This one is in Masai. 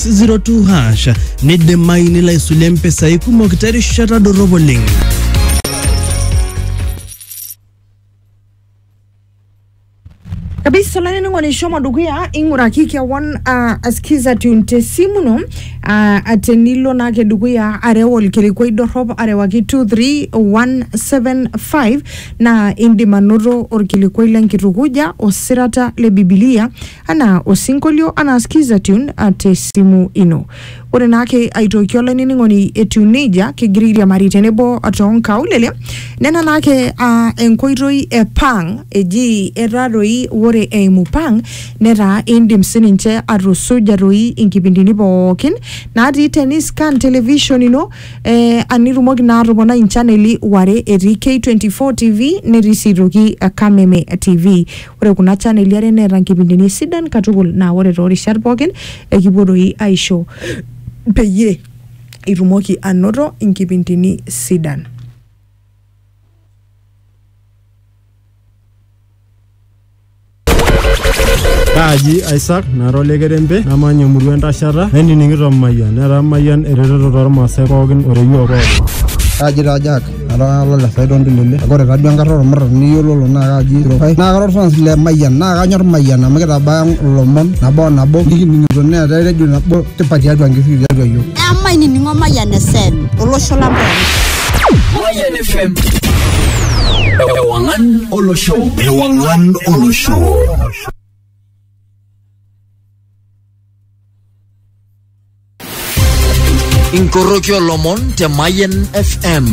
02 hash neidimayu nilo aisulie mpisai kumok terishata dorrop oleng. kabisa olainining'oni shomo dukuya ing'uraki kewon uh, askiza tune te simu ino uh, tenilo naake dukuya areu olkilikwai dorrop arewaki 23175 naa indim anoto olkilikwai lenkitukuja osirata le bibilia Anaa osinkolio anaa skiza tune te simu ino. Ore naake aitoki olainining'oni etiu neijia kigira airiamari tenebo too nkaulele nena naake aa enkoitoi e pang eji etaa doi ore eimu pang netaa indim sininche atusuja doi inkipindini pookin natii teni scan television ino eh, anitumoki naa atoponai inchaneli ware etii K24 TV netii sii aitoki Kameme TV. Ore kuna chaneli are neeta nkipindini sidan katukul naa ore too rishat pookin ekipuo doi aisho peyie itumoki anoto nkipindini sidan. Kaaji Isaac nara ole kerempe namanya emurua entashata nainining'ito Mayian netaa Mayian eretoto tormaasai pookin o te yiok pookin. Kaaji taa Jack Atalala le Saidon Ndulele. Ore taduo enkarna ormurran niyiololo naa kaji Tirokai. Naa kara orfans le Mayian naa kanyor Mayian amu kitabaya ilomon nabo o nabo nikining'ito neetae redio nabo tipat tiatua nkishui tiatua iyiook. Emainining'o Mayian FM olosho lang pooki. Mayian FM. Ewang'an olosho. Ewang'an olosho. Inkoroki olomon te Mayen FM.